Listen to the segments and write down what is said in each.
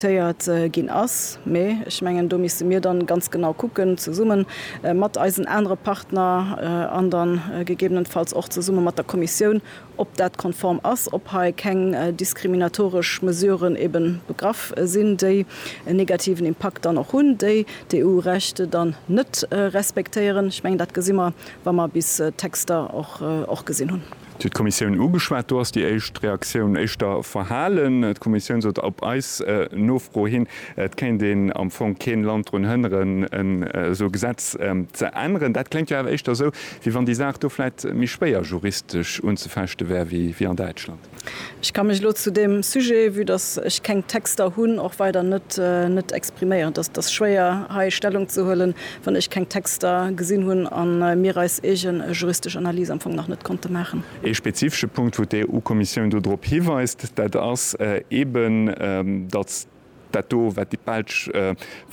téiert ginn ass, mä ech mengen, do misste mir dann ganz genau kucken, zesumme mat eisen anere Partner an dann gegebenenfalls och zesumme mat der Kommissioun, ob dat konform ass, ob hei keng diskriminatoresch Mesuren ebe begraff sinn, déi en negativen Impakt dann och hunn, déi d'EU-Recht dann net respektéieren. Ech mengen, dat gesi mer, wa mer bis d'Texter och gesinn hunn. Et huet d'Kommissioun ugeschwat. Do ass déi éischt Reaktioun éischter verhalen. D'Kommissioun sot op eis Nofro hin, et kéint een am Fong keen Land drun hënneren, en esou Gesetz ze änneren. Dat kléngt jo awer éischter esou, wéi wann déi Saach do vläit méi schwéier juristesch unzefechte wär wéi an Däitschland. Ech ka mech elo zu deem Sujet, vue dass ech keng Texter hunn, och weider net expriméieren. Dat ass schwéier hei Stellung ze huelen. wann ech keng Texter gesinn hunn a mir eis eege juristesch Analys am Fong nach net konnte maachen. Ee spezifesche Punkt, wou d'EU-Kommissioun do drop hiweist, dat ass eeben, datt dat do, wat déi Belsch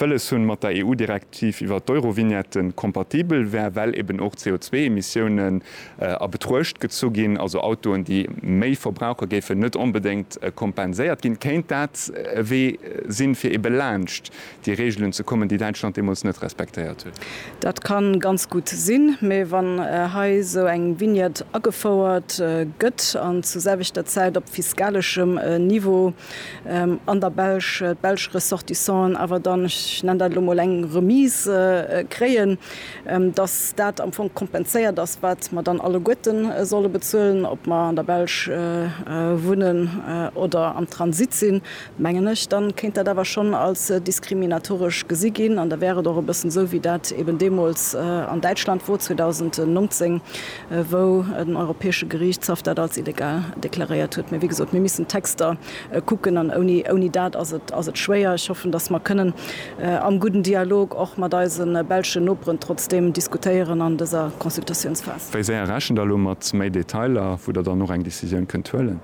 wëlles hunn, mat der EU-Direktiv iwwert d'Eurovignette kompatibel wär, well eeben och d'CO2-Emissiounen a Betruecht gezu ginn. Also Autoen, déi méi verbrauche géifen net onbedéngt kompenséiert ginn. Kéint dat e Wee sinn, fir eebe laanscht déi Reegelen ze kommen, déi Däitschland deemools net respektéiert huet. Dat ka ganz gutt sinn, mee wann hei esou eng Vignette agefouert gëtt an zur selwechter Zäit op fiskaleschem Niveau an der Belsch d'belsch Ressortissanten awer dann, ech nennen dat elo mol, eng Remise kréien, dass dat am Fong kompenséiert ass, wat mer dann alleguerte solle bezuelen, ob mer an der Belsch wunnen oder am Transit sinn. mengen ech, dann kéint dat awer schonn als diskriminatoresch gesi ginn, an da wär et och e bëssen esou wéi dat eben deemools an Däitschland wor 2019, wou den Europäesche Geriichtshaff dat als illegal deklaréiert huet. Mee wéi gesot, mir missen d'Texter kucken an ouni dat ass et schwéier. Ech hoffen, datt mer kënnen am gudden Dialog och mat eise belschen Noperen trotzdeem diskutéieren an dëser Consultatiounsphas. Wéi séier rechent Der elo mat méi Detailer, wou Der dann och eng Decisioun kënnt huelen?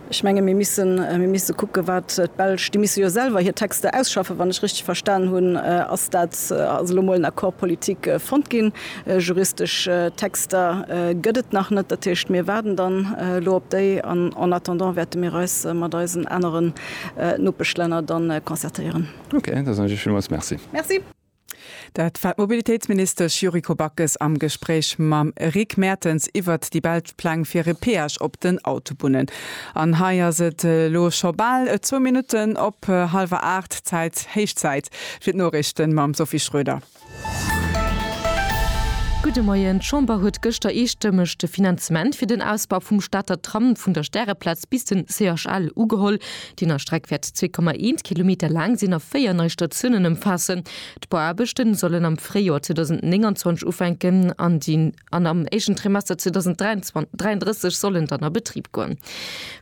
Ech menge mir missen, mir misse kucke wat d'Belsch, déi misse jo selwer hir Texter ausschaffen, wann ech richteg verstan hunn, ass dat, ass elo emol en Accord politique fonnt ginn. Juristesch Texter gëtt et nach net, dat heescht mir waarden dann elo op déi an en attendant wäerte mir eis mat eisen aneren Nopeschlänner dann concertéieren. Okay, da soen ech Iech villmools Merci. Merci. Dat war d'Mobilitéitsministesch Yuriko Backes am Gespréich mam Rick Mertens iwwert déi belsch Pläng fir e Peage op den Autobunnen. An hei ass et elo scho bal zwou Minutten op hallwer aacht Zäit, héich Zäit fir d'Noriichten mam Sophie Schröder. Gudde Moien. D'Chamber huet gëschter eestëmmeg de Finanzement fir den Ausbau vum Stater Tram vun der Stäreplaz bis den CHL ugeholl. D'Innerstreck wäert 2,1 Kilometer laang sinn a véier nei Statiounen ëmfaassen. D'Bauaarbechte sollen am Fréijoer 2029 ufänken an déi an am éischten Trimester 2033 sollen dann a Betrib goen.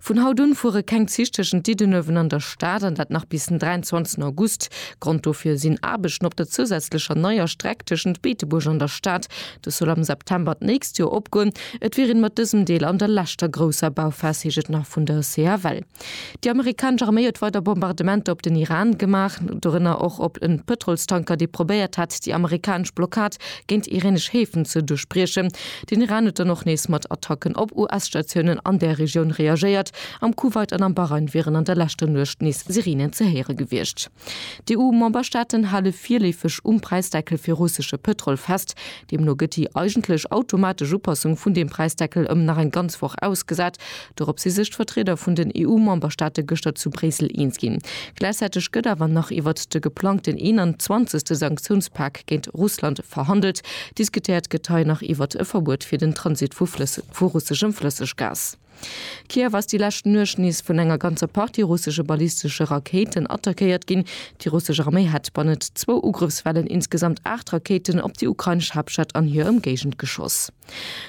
Vun haut un fuere keng Zich tëschent Diddenuewen an der Stad an dat nach bis den 23 August. Grond dofir sinn Aarbechten op der zousätzlecher neier Streck tëschent Beetebuerg an der Stad. Dës soll am September d'nächst Joer opgoen. Et wier een mat dësem Deel an der leschter grousser Bauphas, heescht et nach vun der CFL. Déi amerikanesch Arméi huet weider Bombardementer op den Iran gemaach, dorënner och op e Pëtrolstanker, dee probéiert hat, déi amerikanesch Blockad géint iranesch Häfen ze duerchbriechen. Den Iran huet dann och nees mat Attacken op US-Statiounen an där Regioun reagéiert. Am Kuwait an am Bahrain wieren an der leschter Nuecht nees Sirenen ze héiere gewiescht. D'EU-Memberstaaten hale virleefeg um Präisdeckel fir russesche Pëtrol fest. Deemno gëtt déi eigentlech automatesch Upassung vun deem Präisdeckel ëm nach eng ganz Woch ausgesat. Dorop si sech d'Vertrieder vun den EU-Memberstaate gëschter zu Bréissel eens ginn. Gläichzäiteg gëtt awer nach iwwert de geplangten 21. Sanktiounspak géint Russland verhandelt. Diskutéiert gëtt hei nach iwwert e Verbuet fir den Transit vu Flësseg, vu russeschem Flësseggas. Kiew ass déi lescht Nuecht nees vun enger ganzer Partie russesche ballistesche Rakéiten attackéiert ginn. Déi russesch Arméi hätt bannent zwou Ugrëffswellen insgesamt aacht Rakéiten op déi ukrainesch Haaptstad an hir Ëmgéigend geschoss.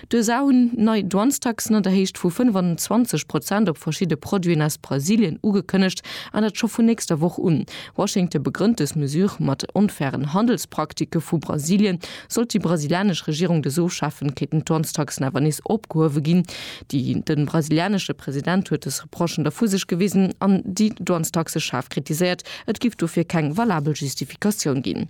D'USA hunn nei Douanestaxen an der Héicht vu 25 Prozent op verschidde Produiten aus Brasilien ugekënnegt, an dat scho vun nächster Woch un. Washington begrënnt dës Mesure mat onfairen Handelsprakticke vu Brasilien, Sollt déi brasilianesch Regierung dës ofschafen, kéinten d'Dwangstaxen awer nees opgehuewe ginn. Den brasilianesche President huet dës Reprochen da vu sech gewisen an déi Dwangstaxe schaarf kritiséiert, et giff dofir keng valabel Justifikatioun ginn.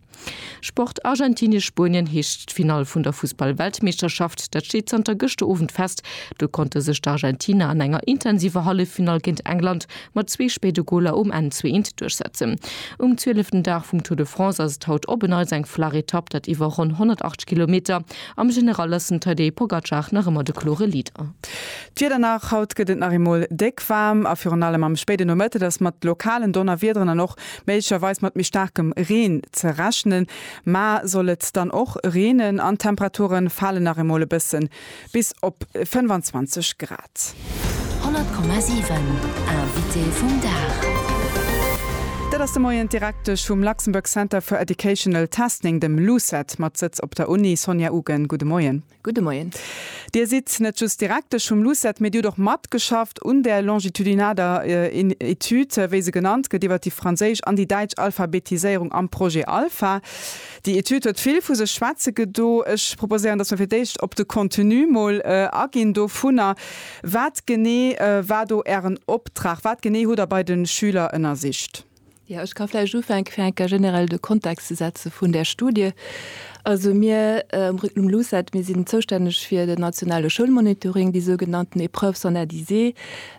Sport, Argentinie-Spuenien heescht d'Finall vun der Fussball-Weltmeeschterschaft. Dat steet zanter gëschter Owend fest. Do konnte sech d'Argentiner an enger intensiver Halleffinall géint England mat zwee spéide Goler um Enn zu eent duerchsetzen. Um zwieleften Dag vum Tour de France ass et haut op en Neits eng flaach Etapp, dat iwwer ronn 108 Kilometer. Am General ass den Tadej Pogacar nach ëmmer de klore Leader. D'Wieder nach, Haut gëtt et nach eemol déck waarm a virun allem am spéiden Nomëtte ass mat lokalen Donnerwiederen an och méiglecherweis mat méi staarkem Reen ze rechnen. Mar soll et dann och reenen an d'Temperaturen falen nach emol e bëssen, Bis op 25 Grad. 100,7 Invité vum Dag. Dat ass de Moien d'Direktesch vum Luxembourg Center for Educational Testing, dem LUCET, mat Sëtz op der Uni, Sonja Ugen. Gudde Moien. Gudde Moien. Dir sidd net just Direktesch vum LUCET, mee Dir hutt och matgeschafft un där longitudinader Etüd, wéi se genannt gëtt, iwwer déi franséisch an déi däitsch Alphabetiséierung am Projet Alpha. Déi Etüd huet vill vu sech schwätze gedo. Ech proposéieren, dass mer fir d'éischt op de Contenu mol aginn dovunner. Wat genee war do Ären Optrag? Wat genee hutt Der bei de Schüler ënnersicht? Jo, ech ka vläicht ufänke fir eng Kéier generell de Kontext ze setze vun där Studie. Also mir um Regnum LUCET, mir sinn zoustänneg fir den nationale Schoulmonitoring, déi sougenannten Épreuves standardisées.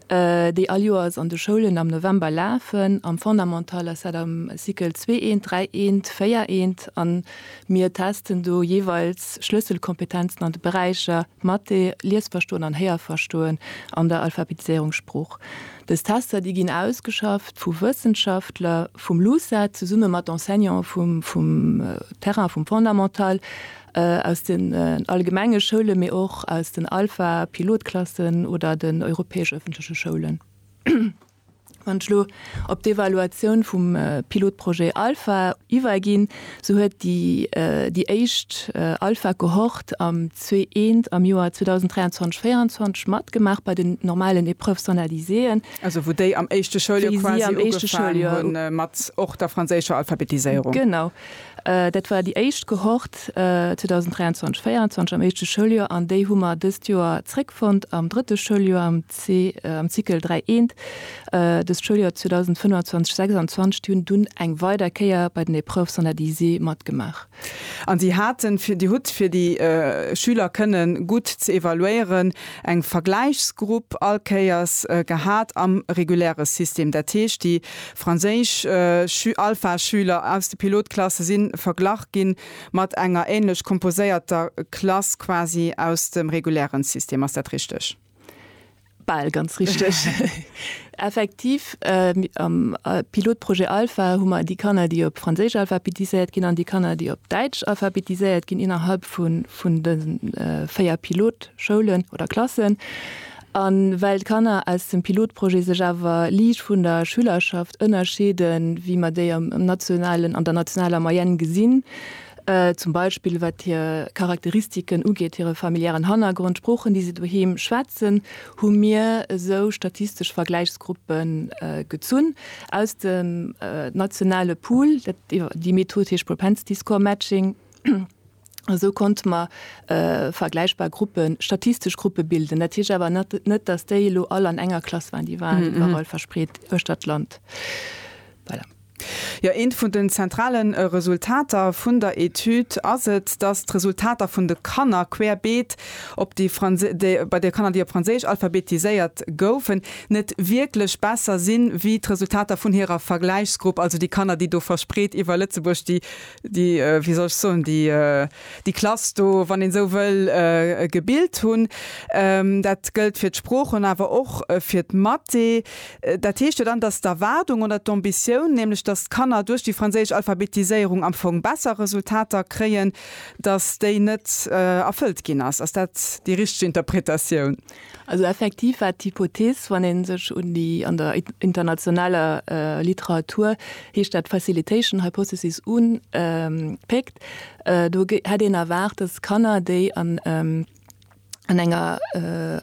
déi all Joers an de Schoulen am November lafen, am Fondamental ass dat am Cycle zwee eent, dräi eent, véier eent, a mir testen do jeeweils Schlësselkompetenzen an de Beräicher Mathé, Liesverstoen an Héierverstoen an der Alphabetiséierung Sprooch. Dës Tester, déi ginn ausgeschafft vu Wëssenschaftler vum LUCET zesumme mat Enseignante vum Terrain vum Fondamental, Aus den allgemenge Schoule mee och aus den Alpha, Pilotklassen oder den europäesch ëffentleche Schoulen. Wann ech elo op d'Evaluatioun vum Pilotprojet Alpha iwwerginn, sou huet déi éischt Alpha-Cohorte am CE1 am Joer 2023, 24 matgemaach bei den normalen Épreuves analyséen. Also wou déi am éischte Schouljoer quasi ugefaangen hunn mat och der franséischer Alphabetiséierung. Genau. Dat war déi éischt Cohorte 2023, 24 am éischte Schouljoer an déi hu mer dëst Joer zréckfonnt am drëtte Schouljoer am am Cycle 3 I. Dëst Schouljoer 2025, 26, déi hunn dunn eng weider Kéier bei den Épreuves standardisées matgemaach. An Dir haten fir, Dir hutt fir déi Schüler kënnen gutt ze evaluéieren, eng Vergläichsgrupp all Kéiers gehat am reguläre System. Dat heescht, déi Franséisch, Schü-, Alpha-Schüler aus de Pilotklasse si verglach gi mat enger änlech komposéierter Klass quasi aus dem reguläre System. Ass dat richteg? Bal ganz richteg, effektiv. Am Pilotprojet Alpha hu mer déi Kanner, déi op Franséisch alphabetiséiert ginn, an déi Kanner, déi op Däitsch alphabetiséiert ginn, innerhalb vun de véier Pilotschoulen oder klassen. A well d'Kanner aus dem Pilotprojet sech awer liicht vun der Schülerschaft ënnerscheeden, wéi mer déi am nationalen, an der nationaler Moyenne gesinn, zum Beispill wat hir Charakteristiken ugeet, hire familiären Hannergrond, d'Sproochen, déi se doheem schwätzen, hu mir esou statistesch Vergläichsgruppe gezunn aus dem nationale Pool. Déi Method heescht Propensity Score Matching. Esou konnte mer vergläichbar Gruppen, statistesch Gruppe bilden. Dat heescht awer net, dass déi elo all an enger Klass waren, déi waren iwwerall verspreet uechtert d'Land. Voilà. Jo, eent vun den zentrale Resultater vun der Etüd ass et, dass d'Resultater vun de Kanner querbeet op déi, bei de Kanner, déi op Franséisch alphabetiséiert goufen, net wierklech besser sinn, wéi d'Resultater vun hirer Vergläichsgrupp, also déi Kanner, déi do verspreet iwwer Lëtzebuerg, déi déi, wéi soll ech soen, déi, déi Klass do, wann een esou wëll, gebilt hunn. Dat gëllt fir d'Sproochen an awer och fir d'Mathé. Dat heescht jo dann, dass d'Erwaardung oder d'Ambitioun, nämlech dass d'Kanner duerch déi franséisch Alphabetiséierung am Fong besser Resultater kréien, dass déi net erfëllt ginn ass. Ass dat déi richteg Interpretatioun? Also effektiv war d'Hypothees, wann ee sech un déi an der internationaler Literatur heescht dat facilitation hypothesis unpéckt, do hätt een erwaart, datt Kanner, déi an enger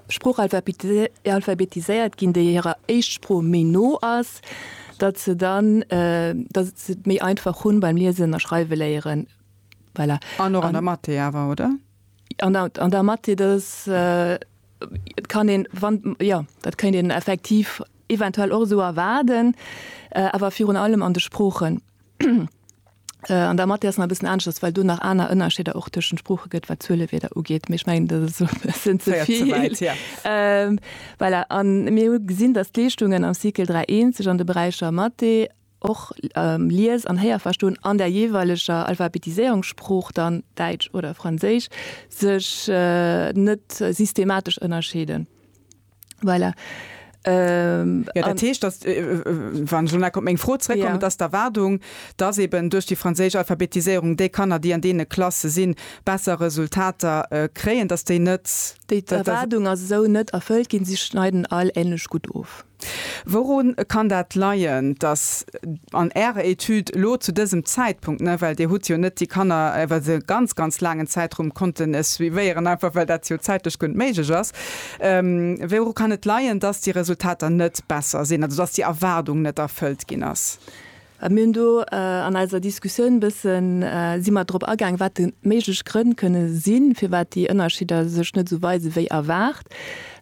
Sprooch alphabetiséiert ginn, déi hirer Éischtsprooch méi no ass, datt se dann, datt se et méi einfach hunn beim Liesen a Schreiweléieren. Voilà. An och an der Mathé awer, oder? An da mat dir dës, et kann een, wann, jo, dat kéint een effektiv eventuell och esou erwaarden, awer virun allem an de Sproochen. An da mat dir ass nach e bëssen anescht, well do nach aner Ënnerscheeder och tëschent de Sprooche gëtt, wat d'Zuelewierder ugeet. Mee ech mengen, dat ass elo e bëssen ze vill. Voilà. An mir hu gesinn, dass d'Leeschtungen am Cycle 3 I sech an de Beräicher Mathé, och Lies an Héierverstoen an der jeeweileger Alphabetiséierungssprooch, dann Däitsch oder Franséisch, sech net systematesch ënnerscheeden. Voilà. Jo, dat heescht, dass, wann ech elo nach op meng Fro zrëckkommen, dass d'Erwaardung, dass eben duerch déi franséisch Alphabetiséierung déi Kanner, déi an deene Klasse sinn, besser Resultater kréien, dass déi net. Déi Erwaardung ass esou net erfëllt ginn. Si schneiden all änlech gutt of. Wourun kann dat leien, datt an Ärer Etüd elo zu dësem Zäitpunkt, well Dir hutt jo net déi Kanner iwwer e ganz, ganz laangen Zäitraum konnten suivéieren, einfach well dat jo zäitlech guer net méiglech ass, wouru kann et leien, datt déi Resultater net besser sinn, also datt déi Erwaardung net erfëllt ginn ass? Mir hunn do an eiser Diskussioun e bëssen, si mer drop agaang, wat de méiglech Grënn kënne sinn, firwat déi Ënnerschidder sech net esou weise wéi erwaart.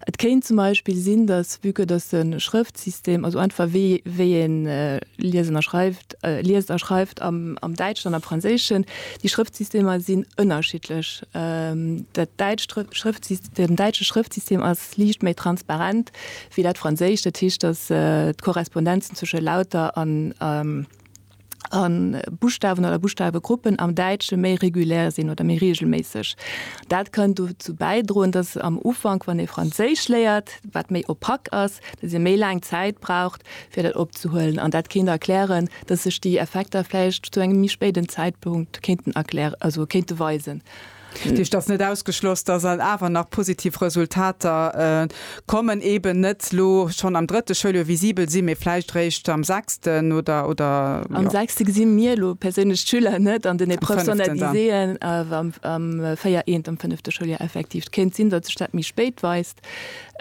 Et kéint zum Beispill sinn, dass vue que dass de Schrëftsystem, also einfach wéi wéi ee liesen a schreift, liest a schreift am Däitschen an am Franséischen, déi Schrëftsystemer sinn ënnerschiddlech. Dat däitscht Schrëftsystem, den däitsche Schrëftsystem ass Liicht méi transparent wéi dat franséischt. Dat heescht, datt d'Korrespondenzen zwësche Lauter a Buschtawen oder Buschtawegruppen am Däitsche méi regulär sinn oder méi reegelméisseg. Dat kann dozou bäidroen, datt am Ufank, wann ee Franséisch léiert, wat méi opak ass, datt ee méi laang Zäit braucht, fir dat opzehuelen. An dat kéint erklären, datt sech déi Effekter vläicht zu engem méi spéiden Zäitpunkt kéinten erklä-, also kéinte weisen. Dech et ass net ausgeschloss, dass et awer nach positiv Resultater kommen, eeben net elo schonn am drëtte Schouljoer visibel sinn, mee vläicht réischt am sechsten oder, oder, jo. Am sechste gesi mir elo perséinlech d'Schüler net an den Épreuves Am fënneften dann. standardisées, awer am, am véier eent am fënnefte Schouljoer effektiv. Et kéint sinn, datt sech dat méi spéit weist,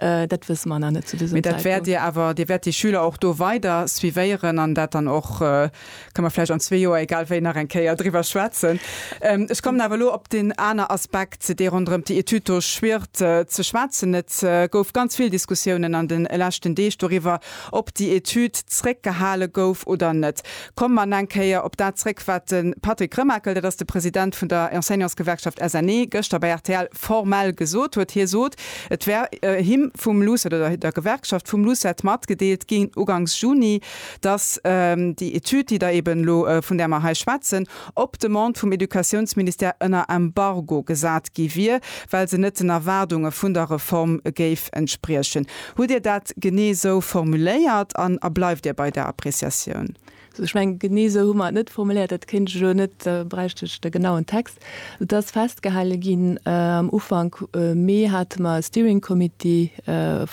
dat wësse mer nach net zu dësem Mee dat wäert Zäitpunkt. Dir awer, Dir wäert déi Schüler och do weider suivéieren an dat dann och Kann mer vläicht an zwee Joer egal wéi nach eng Kéier driwwer schwätzen. Ech kommen awer elo op deen aner Aspekt, dee ronderëm déi Etüd do schwiert, ze schwätzen. Et gouf ganz vill Diskussiounen an de leschten Deeg doriwwer, ob déi Etüd zréckgehale gouf oder net. Komme mer eng Kéier op dat zréck, wat de Patrick Remakel, dat ass de President vun der Enseignantsgewerkschaft SNE, gëschter bei rtl formell gesot huet. Hie sot, et wär him vum LUCET oder der Gewerkschaft vum LUCET matgedeelt ginn, ugangs Juni, dass déi Etüd, déi Der eben elo, vun där mer hei schwätzen, op Demande vum Educatiounsministère ënner Embargo gesat gi wier, well se net den Erwaardunge vun der Reform géif entspriechen. Hutt Dir dat genee esou formuléiert an bleift Dir bei där Appréciatioun? Ech mengen, genee esou hu mer et net formuléiert. Dat kéint ech elo net, da bräicht ech de genauen Text. Et ass festgehale ginn, am Ufank Mee hate mer e Steering Committee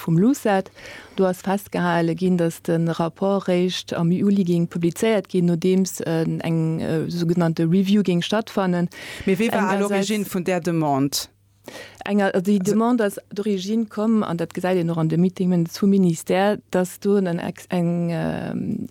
vum LUCET, Do ass festgehale ginn, datt de Rapport réischt am Juli géing publizéiert ginn, nodeems eng sougenannte Review géing stattfannen. Mee wie war à l'origine vun där Demande? Déi Demande ass d'origine komm, an dat gesäit een och an de Meeting Minutes vum Ministère, datt do en,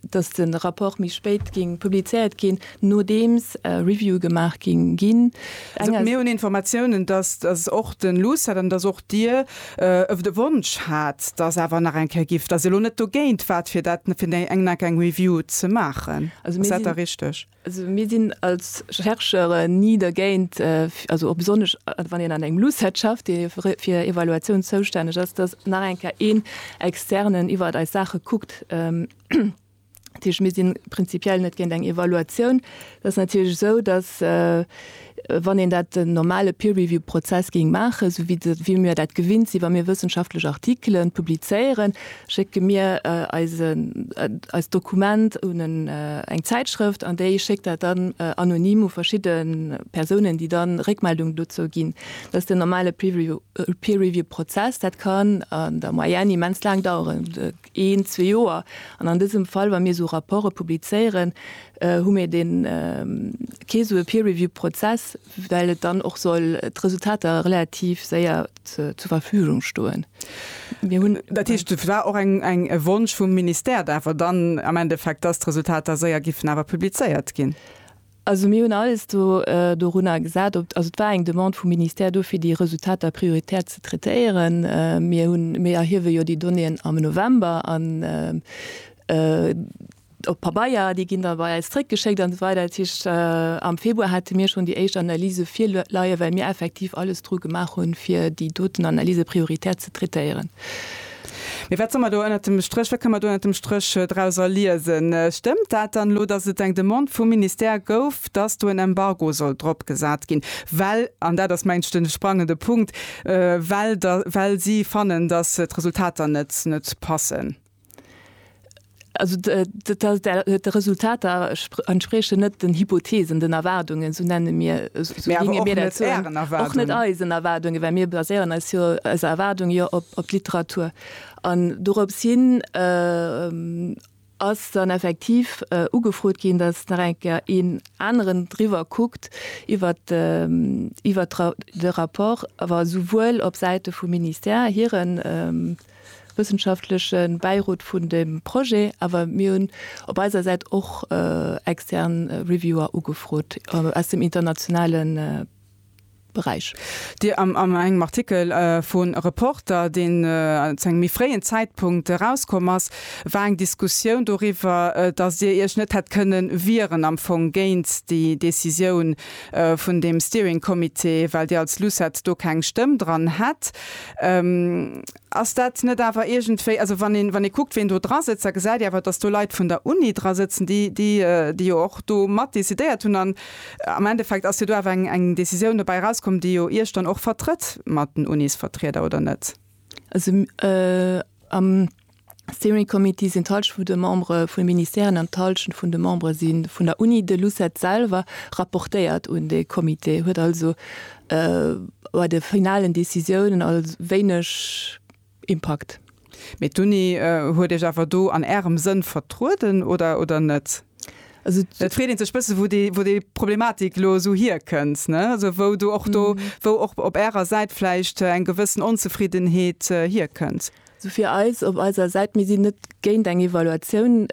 datt de Rapport méi spéit géing publizéiert ginn, Nodeems Reviewe gemaach ginn ginn. Also mir hunn Informatiounen, dass dass och de LUCET an dass och Dir ef de Wonsch hat, dass awer nach eng Kéier giff, dass Dir elo net dogéint waart, fir dat fir eng eng nach eng Review ze maachen. Also mir sinn. Ass dat da richteg? Also mir sinn als Chercheure ni dergéint, also och besonnesch wann een an engem LUCET schafft, dee fir Evaluatioun zoustänneg ass, dass nach eng Kéier een Externen iwwert eis Saache kuckt. Dat heescht, mir sinn prinzipiell net géint eng Evaluatioun. Et ass natierlech esou, datt, wann een dat den normale Peer-Review-Prozess géing maachen, esou wéi de, wéi mir dat gewinnt sinn, wa mir wëssenschaftlech Artikelen publizéieren, schécke mir eisen, eist Dokument un en, eng Zäitschrëft an déi schéckt dat dann anonym u verschidde Persounen, déi dann Réckmeldung dozou ginn. Dat ass den normale Peer-Review, Peer-Review-Prozess. Dat kann an der Moyenne immens laang daueren. een, zwee Joer. An an dësem Fall, wa mir esou Rapporte publizéieren, hu mir dee kee sou e Peer-Review-Prozess, well et dann och soll d'Resultater relativ séier zur Verfügung stoen. Mir hunn. Dat heescht, et war och eng e Wonsch vum Ministère awer dann am Endeffekt, dass d'Resultater séier géifen awer publizéiert ginn? Also mir hunn alles do dorunner gesat, ob, also et war eng Demande vum Ministère do fir déi Resultater prioritär ze traitéieren. Mir hunn, mir erhiewe jo déi Donnéeën am November an op Pabeier, déi ginn da bei eis zréckgeschéckt an esou weider. Dat heescht am Februar hate mir schonn déi éischt Analyse virleie well mir effektiv alles dru gemaach hunn, fir déi doten Analyse prioritär ze traitéieren. Mee wat soll mer do ënnert dem Stréch, wat kënne mer do ënnert dem Stréch drauser liesen? Stëmmt dat dann elo, datt et eng Demande vum Ministère gouf, datt do en Embargo soll drop gesat ginn, well, an dat ass mengt ech de sprangende Punkt, well der, well si fannen, datt d'Resultater net, net passen? Also de Resultater entsprechen net den Hypotheesen, den Erwaardungen, sou nenne mir och net eisen Erwaardungen, well mir baséieren eis jo eis Erwaardung jo op d'Literatur. An dorops hin ass dann effektiv ugefrot ginn, datt nach eng Kéier een aneren driwwer kuckt iwwert de Rapport, awer souwuel op Säite vum Ministère hiren. wëssenschaftleche Bäirot vun deem Projet, awer mir hunn op eiser Säit och extern Reviewer ugefrot aus dem internationale Beräich. Dir am engem Artikel vu Reporter, deen zu engem méi fréien Zäitpunkt erauskomm ass, war eng Diskussioun doriwwer, dass Dir Iech net hätt kënnen wieren am Fong géint déi Decisioun, vun deem Steering Committee, well Dir als LUCET do keng Stëmm dran hätt. Ass dat net awer iergendwéi, also wann ee, wann ee kuckt, ween do dra sëtzt, da gesäit ee awer, datt do Leit vun der Uni dra sëtzen, déi, déi, déi jo och do mat decidéiert hunn. An am Endeffekt ass jo do awer eng, eng Décisioun dobäi erauskomm, déi jo Iech dann och vertrëtt mat den Unisvertrieder, oder net? Also am. Steering Committee sinn d'Halschent vun de Membere vun de Ministèren an d'Halschent vun de Membere si vun der Uni. De Lucet selwer rapportéiert un dee Comité, huet also bei de finalen Decisiounen als wéineg Impakt. Mee d'Uni huet Iech awer do an Ärem Sënn vertrueden, oder, oder net? Et freet ee sech bësse wou déi Problematik elo esou hierkënnt, ne? Also wou do och do, wou och op Ärer Säit vläicht eng gewëssen Onzefriddenheet hierkënnt. Sou fir eis op eiser Säit, mir sinn net géint eng Evaluatioun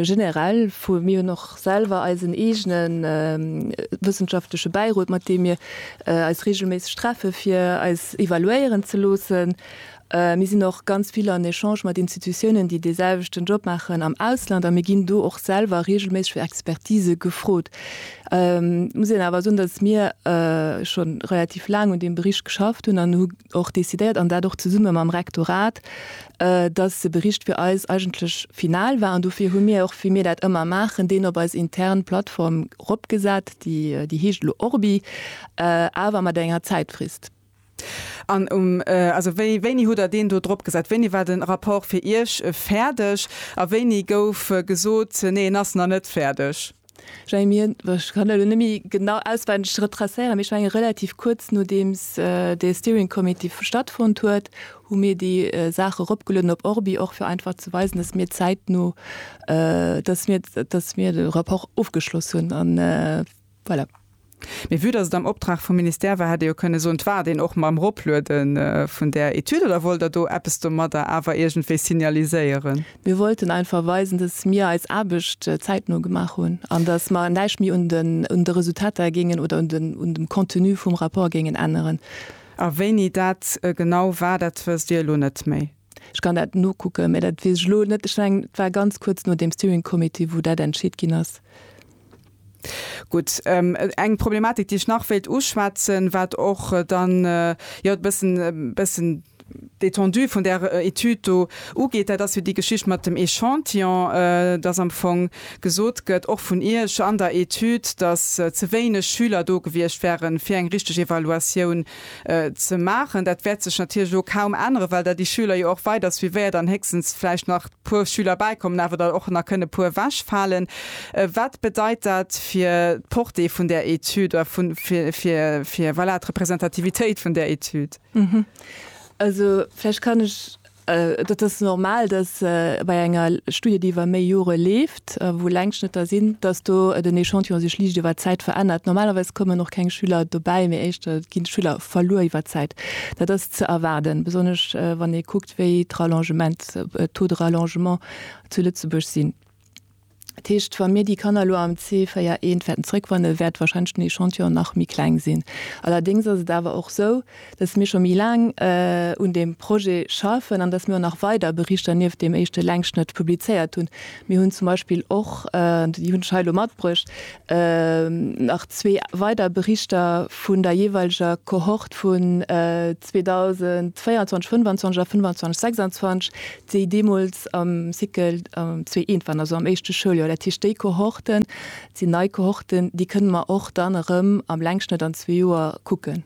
generell vu, mir hunn och selwer eisen eegene wëssenschaftleche Bäirot, mat deem mir eis reegelméisseg treffe fir eis evaluéieren ze loossen. Mir sinn och ganz vill an Echange mat Institutiounen, déi dee selwechten Job maachen am Ausland a mir ginn do och selwer reegelméisseg fir Expertise gefrot. Et muss een awer soen, datt mir scho relativ laang un deem Bericht geschafft hunn an hu och decidéiert, an dat och zesumme mam Rektorat, dass de Bericht fir eis eigentlech final war. An dofir hu mir och, wéi mir dat ëmmer maachen, deen op eis intern Plattform eropgesat, déi déi heescht elo Orbi, awer mat enger Zäitfrist. An um, also wéi, wéini hutt Der deen do dropgesat? Wéini war de Rapport fir Iech fäerdeg a wéini gouf gesot, nee, en ass nach net fäerdeg? Jamie, ech kann elo net méi genau auswenneg retracéieren, mee ech menge relativ kuerz nodeems dee Steering Committee stattfonnt huet, hu mir déi Saach eropgelueden op ORBi, och fir einfach ze weisen, datt mir zäitno, datt mir, datt mir de Rapport ofgeschloss hunn an voilà. Mee vue dass et am Optrag vum Ministère war, hätt ee jo kënne soen, et waart een och mam Ropluede vun där Etüd. Oder wollt Der do eppes domadder awer iergendwéi signaliséieren? Mir wollten einfach weisen, dass mir eis Aarbecht zäitno gemaach hunn an dass mer näischt méi un de Resultater géingen oder un dem Contenu vum Rapport géingen änneren. A wéini dat genau war, dat wësst Dir elo net méi? Ech kann dat nokucken, mä dat weess ech elo net. Ech mengen, et war ganz kuerz no deem Steering Committee, wou dat entscheet ginn ass. Gutt, eng Problematik, déi ech nach wéilt uschwätzen, wat och dann, jo, e bëssen, e bëssen d'Étendue vun där Etüd do ugeet, dat ass jo déi Geschicht mat dem Echantillon, dass am Fong gesot gëtt, och vun Iech an der Etüd, dass ze wéineg Schüler do gewiescht wären, fir eng richtig Evaluatioun ze maachen. Dat wäert sech natierlech elo kaum änneren, well der déi Schüler jo och weider suivéiert an héchstens vläicht nach puer Schüler bäikommen, awer der och nach kënne puer ewechfalen. Wat bedeit dat fir d'Portée vun där Etüd oder vun, fir, fir, fir, voilà, d'Representativitéit vun där Etüd? Also vläicht kann ech Dat ass normal, dass bei enger Studie, déi iwwer méi Jore leeft, wou Längsschnëtter sinn, dass do den Echantillon sech liicht iwwer d'Zäit verännert. Normalerweis kommen och keng Schüler dobäi, mee éischter gi Schüler verluer iwwer d'Zäit. Dat ass ze erwaarden, besonnesch wann ee kuckt, wéi d'Rallongements, d'Taux de rallongement zu Lëtzebuerg sinn. Dat heescht, wa mir déi Kanner elo am C4 I wäerten zréckwanne, wäert wahrscheinlech den Echantillon nach méi kleng sinn. Allerdéngs ass et awer och esou, dass mir scho méi laang un deem Projet schaffen an dass mir och nach weider Berichter nieft deem éischte Längsschnëtt publizéiert hunn. Mir hunn zum Beispill och, an déi hunn ech hei elo matbruecht, nach zwee weider Berichter vun der jeeweilger Cohorte vun 2024, 2025 a 2025, 2026, déi deemools am Cycle 2 I waren, also am éischte Schouljoer, dat heescht déi Kohorten, dat sinn nei Kohorten, déi kënne mer och dann erëm am Längschnëtt an zwee Joer kucken.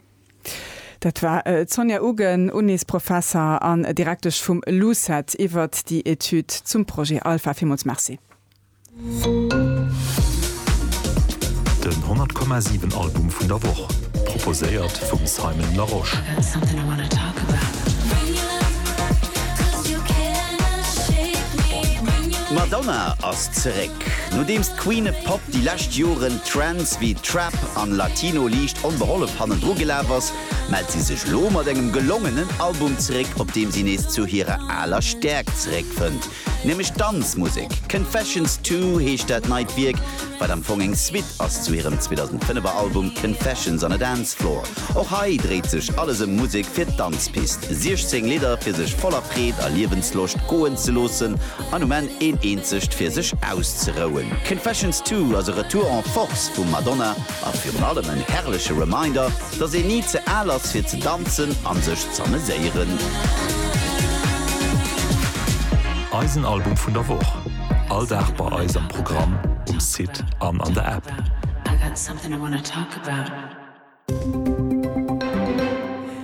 Dat war d'Sonja Uggen, Unisprofesser an Direktesch vum LUCET, iwwert déi Etüd zum Projet Alpha. Villmools Merci. Den 100 Komma 7 Album vun der Woch, proposéiert vum Simon Larosche. D'Madonna ass zeréck. Nodeems d'Queen of Pop déi lescht Joren Trends wéi Trap an Latino liicht onbehollef hannendru gelaf ass, mellt si sech elo mat engem gelongenen Album zeréck, op deem si nees zu hirer aler Stäerkt zeréckfënnt. Nämlech Danzmusek. Confessions Two heescht dat neit Wierk, wat am Fong eng Suite ass zu hirem 2005er Album Confessions on a Dance Floor. Och hei dréit sech alles ëm Musek fir d'Danzpist, 16 Lidder fir sech voller Freed a Liewensloscht goen ze loossen an um Enn een eenzegt fir sech auszerouen. Confessions Two ass e Retour en Force vum Madonna A virun allem en herrleche Reminder, dass een ni ze al ass fir ze danzen an sech z'ameséieren. Eisen Album vun der Woch, all Dag bei eis am Programm, um Site an an der App.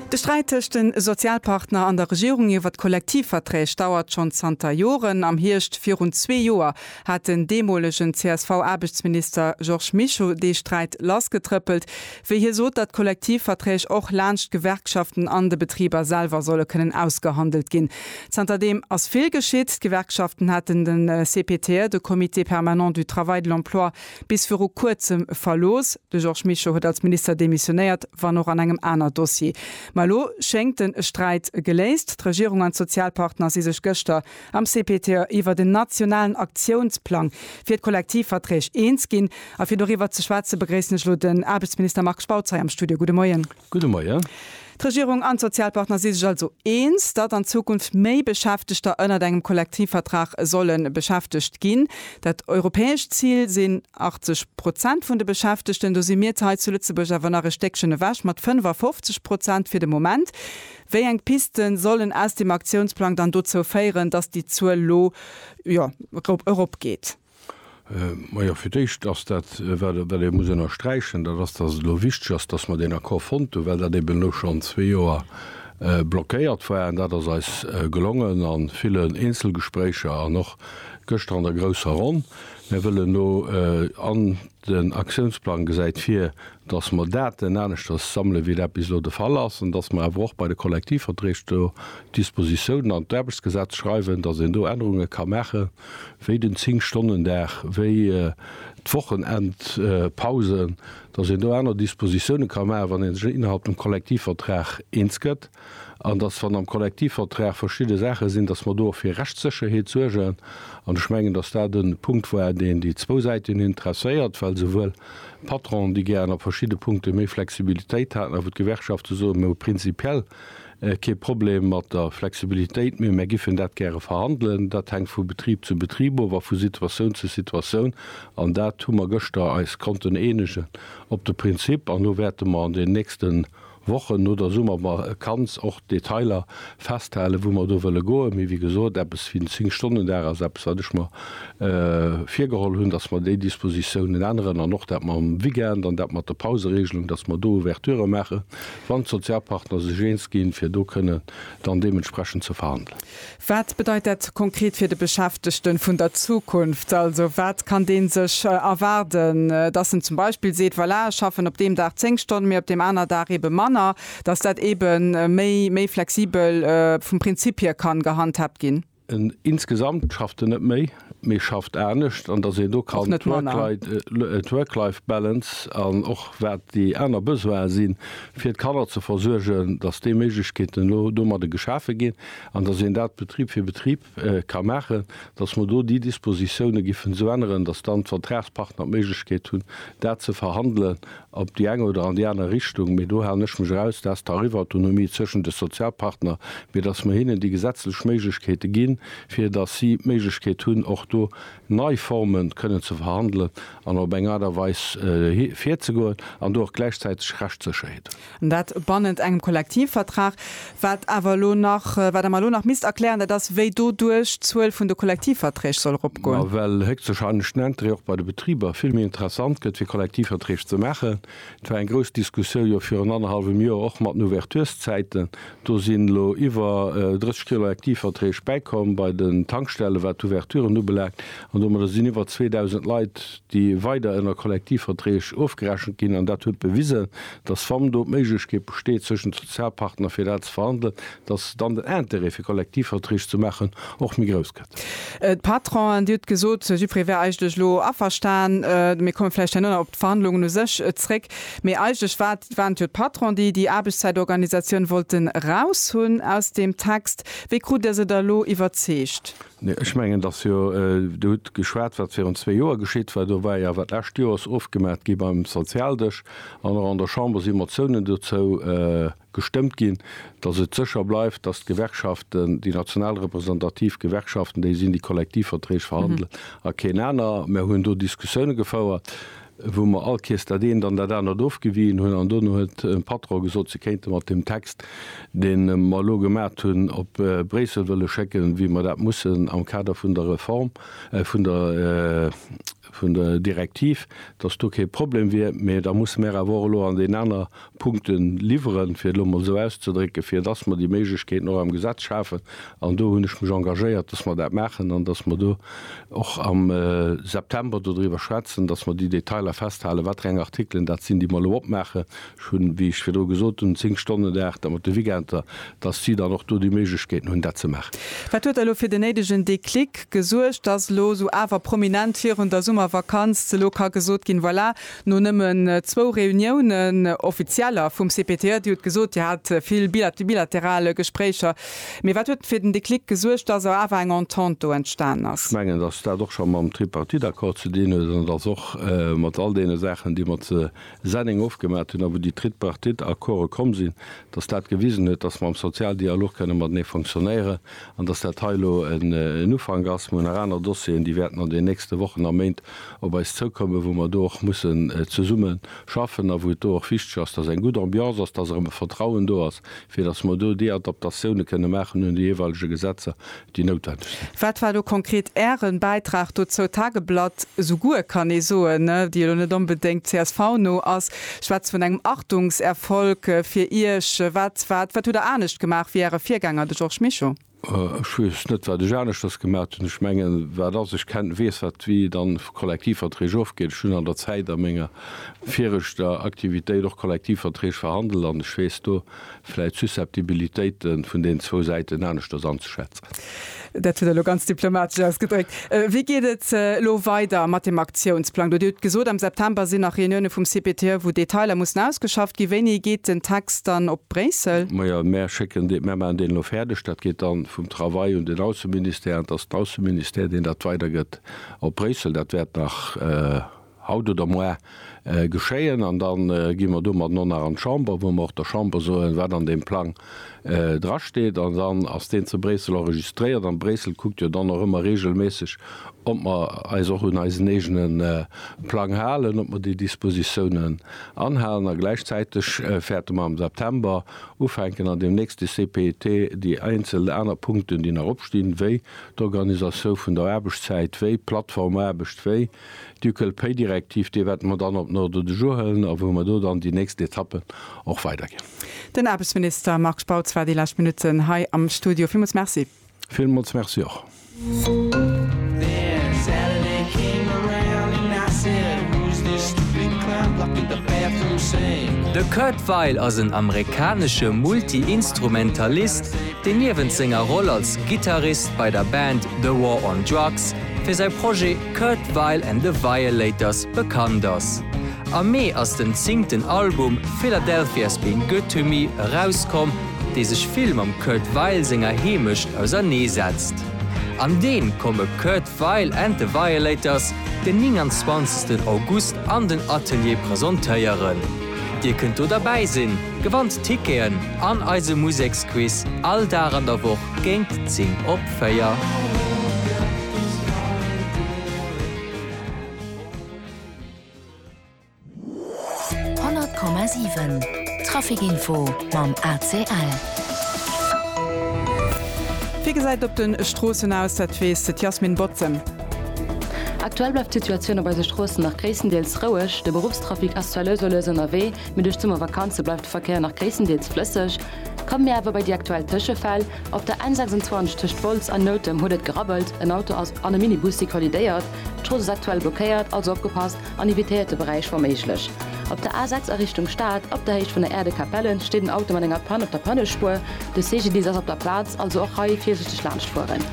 De Sträit tëscht de Sozialpartner an der Regierung iwwer d'Kollektivverträg dauert schonn zanter Joren. Am Hierscht virun zwee Joer hat den deemolegen CSV-Aarbechtsminister Georges Mischo dee Sträit lassgetrëppelt, wéi hie sot, datt d'Kollektivverträg och laanscht d'Gewerkschaften an de Betriber selwer solle kënnen ausgehandelt ginn. Zanter deem ass vill geschitt. D'Gewerkschaften haten de CPTE, de Comité permanent du travail, de l'emploi, bis viru Kuerzem verlooss. De Georges Mischo huet als Minister demissionéiert, wann och an engem aner Dossier. Ma elo schéngt de Sträit geléist. D'Regierung an d'Sozialpartner si sech gëschter am CPTE iwwert en nationalen Aktiounsplang fir d'Kollektivverträg eens ginn. A fir doriwwer ze schwätze begréissen ech elo den Aarbechtsminister Marc Spautz hei am Studio. Gudde Moien. Gudde Moien. D'Regierung an d'Sozialpartner si sech also eens, datt an Zukunft méi Beschäftegter ënnert engem Kollektivvertrag solle beschäftegt ginn. Dat europäescht Zil sinn 80 Prozent vun de Beschäftegten. Do si mir hei zu Lëtzebuerg awer nach e Stéckchen ewech mat 55 Prozent fir de Moment. Wéi eng Pisten sollen aus dem Aktiounsplang dann dozou féieren, datt déi Zuel lo, jo, eropgeet? Majo, fir d'éischt ass dat, wat ee muss ënnersträichen, dat ass, datt et elo wichteg ass, datt mer deen Accord fonnt hunn, well dat eben elo schonn zwee Joer blockéiert war. An dat ass eis gelongen a villen Eenzelgespréicher an och gëschter an der grousser Ronn. Mir wëllen elo an Den Aktiounsplang gesäit vir, dass mer Daten aneschters sammele wéi dat bis elo de Fall ass an dass mer awer och bei de Kollektivverträg do Dispositiounen an d'Aarbechtsgesetz schreiwen, dass een do Ännerunge ka maachen, wéi den Zéng-Stonnen-Dag, wéi d'Wochenendpausen, dass een do aner Dispositiounen ka maachen, wann ee sech innerhalb dem Kollektivvertrag eens gëtt. an dass, wann am Kollektivvertrag verschidde Saache sinn, dass mer do och fir Rechtssécherheet suergen. An ech mengen, dass dat e Punkt war, deen déi zwou Säiten interesséiert, well souwuel d'Patronen, déi gären a verschidde Punkte méi Flexibilitéit haten, a wou d'Gewerkschafte soen, mir hu prinzipiell kee Problem mat der Flexibilitéit, mee mär giffen dat gäre verhandelen. Dat hänkt vu Betrib zu Betrib of a vu Situatioun zu Situatioun. An dat hu mer gëschter eis konnten eenegen op de Prinzip. An elo wäerte mer an den nächsten. Wochen no der Summervakanz och d'Detailer festhalen, wou mer do wëlle goen. Mee wéi gesot, eppes wéi en Zéng-Stonnen-Dag ass eppes, wat ech mer virgeholl hunn, dass mer déi Dispositiounen änneren. An och dat mam Weekend an dat mat der Pauseregelung, dass mer do Ouverturë maachen, wann d'Sozialpartner sech eens ginn, fir do kënnen dann deementsprechend ze verhandelen. Wat bedeit dat konkret fir de Beschäftegte vun der Zukunft? Also wat kann dee sech erwaarden, dass en zum Beispill seet, voilà, ech schaffen op deem Dag zéng Stonne méi, op deem aner Dag eebe manner, dass dat eebe méi flexibel vum Prinzip hier ka gehandhaabt ginn? Insgesamt schafft en net méi, mee schafft anescht an datt een do kann d'Work-Life Balance an och wat déi aner Besoine si fir d'Kanner ze versuergen, datt déi Méiglechkeeten elo domadde geschafe ginn an datt een dat Betrib fir Betrib ka maachen, datt mer do déi Dispositioune giffen esou änneren, datt dann d'Vertragspartner d'Méiglechkeet hunn, dat ze verhandelen op déi eng oder an déi aner Richtung, mee do halen ech mech eraus, dat ass d'Tarifautonomie zwëschen de Sozialpartner, mee datt mer hinnen déi gesetzlech Méiglechkeete ginn, fir datt si d'Méiglechkeet hunn, och do nei Forme kënnen ze verhandelen an op eng Aart a Weis virzegoen an do och gläichzäiteg Rechtssécherheet hunn. An dat bannent engem Kollektivvertrag. Wat awer elo nach, wat Der mer elo nach misst erklären, dat ass, wéi doduerch d'Zuel vun de Kollektivverträg soll eropgoen. Well héchstwahrscheinlech den Intérêt och bei de Betriber vill méi interessant gëtt, fir Kollektivverträg ze maachen. Et war eng grouss Diskussioun jo virun annerhallwem Joer och mat den Ouverturszäiten. Do sinn elo iwwer 30 Kollektivverträg bäikomm bei den Tankstellen, wat d'Ouverturen ubelaangt. An domadder sinn iwwer 2.000 Leit déi weider ënner Kollektivverträg ofgerechent ginn, an dat huet bewisen, dass wann do d'Méiglechkeet besteet zwëschen de Sozialpartner fir dat ze verhandelen, dass dann den Intérêt fir Kollektivverträg ze maachen och méi grouss gëtt. D'Patronen, Dir hutt gesot, Sypre wär eigentlech elo averstan, mir komme vläicht herno nach op d'Verhandlungen u sech zréck, mee eigentlech war et, waren et jo d'Patronen, déi déi Aarbechtszäitorganisatioun wollte raushunn aus deem Text. Wéi krut Der se da elo iwwerzeegt? Mee ech mengen, dass jo, Dir hutt geschwat, wat virun zwee Joer geschitt war. Do war jo wat d'lescht Joers ofgemaach gi beim Sozialdësch an och an der Chamber si Motiounen dozou gestëmmt ginn, dass et sécher bleift, dass d'Gewerkschaften, déi national representativ Gewerkschaften, déi sinn, déi Kollektivverträg verhandelen a keen aner. Mir hunn do Diskussioune gefouert. wou mer all Kees dat eent an dat anert ofgewiien hunn, an dono huet de Patron gesot, se kéinte mat deem Text, dee mer elo gemat hunn, op Bréissel wëlle schécken, wéi mer dat mussen am Kader vun der Reform, vun der, vun der Direktiv, datt do kee Problem wier. Mee da musse mer awer och elo an deen aner Punkte liwweren, fir et elo emol esou auszedrécken, fir dass mer déi Méiglechkeeten och am Gesetz schafen. An do hunn ech mech engagéiert, dass mer dat maachen an dass mer do och am September dodriwwer schwätzen, dass mer déi Detailer festhalen, watereng Artikelen dat sinn, déi mer elo opmaachen. Ech hunn, wéi ech virdru gesot hunn, zéng Stonnen de Dag, da mat de Weekender, dass si dann och do déi Méiglechkeeten hunn, dat ze maachen. Wat huet elo fir den néidegen Déclic gesuergt, dass elo esou awer prominent virun der Summervakanz elo ka gesot ginn, Voilà, No nëmmen zwou Reuniounen, offizieller, vum CPTE, Dir hutt gesot, Dir hat vill bilateral Gespréicher. Mee wat huet fir den Déclic gesuergt, datt awer eng Entente do entstan ass? Ech mengen, datt dat och scho mam Tripartite-Accord ze dinn huet, an et ass och mat all deene Saachen, déi mer ze Senneng ofgemat hunn a wou déi Tripartite-Accorde komm sinn, datt dat gewisen huet, datt mer am Sozialdialog kënne matenee fonctionnéieren. An dass dat hei elo en Ufank ass, mä hu nach aner Dossieren, déi wäerten an den nächste Wochen a Méint op eis zoukommen, wou mer do och mussen zesumme schaffen a wou et do och wichteg ass, dass eng gutt Ambiance ass, dass erëm e Vertrauen do ass, fir dass mer do déi Adaptatiounen kënnen maachen un déi jeeweilege Gesetzer, déi noutwendeg sinn. Wat war elo konkret Äre Bäitrag dozou? D'Tageblatt, esou guer, kann ee soen, déi elo net onbedéngt CSV-no ass, Schwätzt vun engem Achtungserfolg fir Iech. Wat, wat, wat hutt Der anescht gemaach wéi Äre Virgänger, de Georges Mischo? Ech weess net, wat ech aneschters gemat hunn. Ech mengen, wat ass, ech ken, weess, wat, wéi dann Kollektivverträg ofginn. Ech hunn an der Zäit a menger viregter Aktivitéit och Kollektivverträg verhandelt an ech weess, do vläit d'Susceptibilitéite vun deenen zwou Säiten aneschters anzeschätzen. Dat huet Der elo ganz diplomatesch ausgedréckt. Wéi geet et elo weider mat deem Aktiounsplang do? Dir hutt gesot, am September sinn nach Reunioune vum CPTE, wou Detailer mussen ausgeschafft ginn. Wéini geet den Text dann op Bréissel? Majo, mär schécken dee, mär maachen deen elo fäerdeg. Dat geet dann vum Travail un den Ausseministère, an et ass den Ausseministère, deen dat weidergëtt op Bréissel. Dat wäert nach haut oder moar geschéien, an da gi mer domat och nach an d'Chamber, wou mer och der Chamber soen, wat an deem Plang drasteet, an dann ass deen zu Bréissel enregistréiert, an Bréissel kuckt jo dann och ëmmer reegelméisseg, ob mer eis och un eisen eegene Plang halen, ob mer déi Dispositiounen anhalen, a gläichzäiteg fäerte mer am September ufänken, an deem nächste CPET, déi eenzel aner Punkten, déi nach opstinn, wéi d'Organisatioun vun der Aarbechtszäit, wéi d'Plattformaarbecht, wéi. Ducal Pay Direktiv, déi wäerte mer dann op den Ordre du jour hëllen a wou mer do dann déi nächst Etappe och weiderginn. Den Aarbechtsminister Marc Spautz war déi lescht Minutten hei am Studio. Villmools Merci. Villmools Merci och. De Kurt Weill ass en amerikanesche Multi-Instrumentalist, deen niewent senger Roll als Gittarist bei der Band The War on Drugs fir säi Projet, Kurt Weill and the Violators bekannt ass. Am Mee ass den zingten Album Philadelphia's Been Good to Me erauskomm, dee sech vill mam Kurt Weill senger Heemecht ausernee setzt. An deen komme Kurt Weill and the Violators den 29 August an den Atelier presentéieren. Dir kënnt do derbäi sinn, gewannt Ticketen an eise Museksquiz all Dag an der Woch. Géint 10 op 4. Traficinfo mam ACL. Wéi gesäit op de Stroossen aus? Dat weess d'Yasmin Bottem. Aktuell bleift d'Situatioun op eise Stroossen nach gréisstendeels roueg. De Beruffstrafic ass zwar lues a lues ënnerwee, mee duerch d'Summervakanze bleift de Verkéier nach gréisstendeels flësseg. Komme mir awer bei déi aktuell Tëschefäll, Op der N 26 tëscht Wolz an Noutem huet et gerabbelt, en Auto ass an e Mini-Bussi kollidéiert. D'Strooss ass aktuell blockéiert, also opgepasst an evitéiert de Beräich wa méiglech. Op der A 6 a Richtung Stad, op der Héicht vun der Aire de Capellen, steet en Auto mat enger Panne op der Pannespuer. De CGDIS ass op der Plaz, also och hei virsichteg laanscht fueren.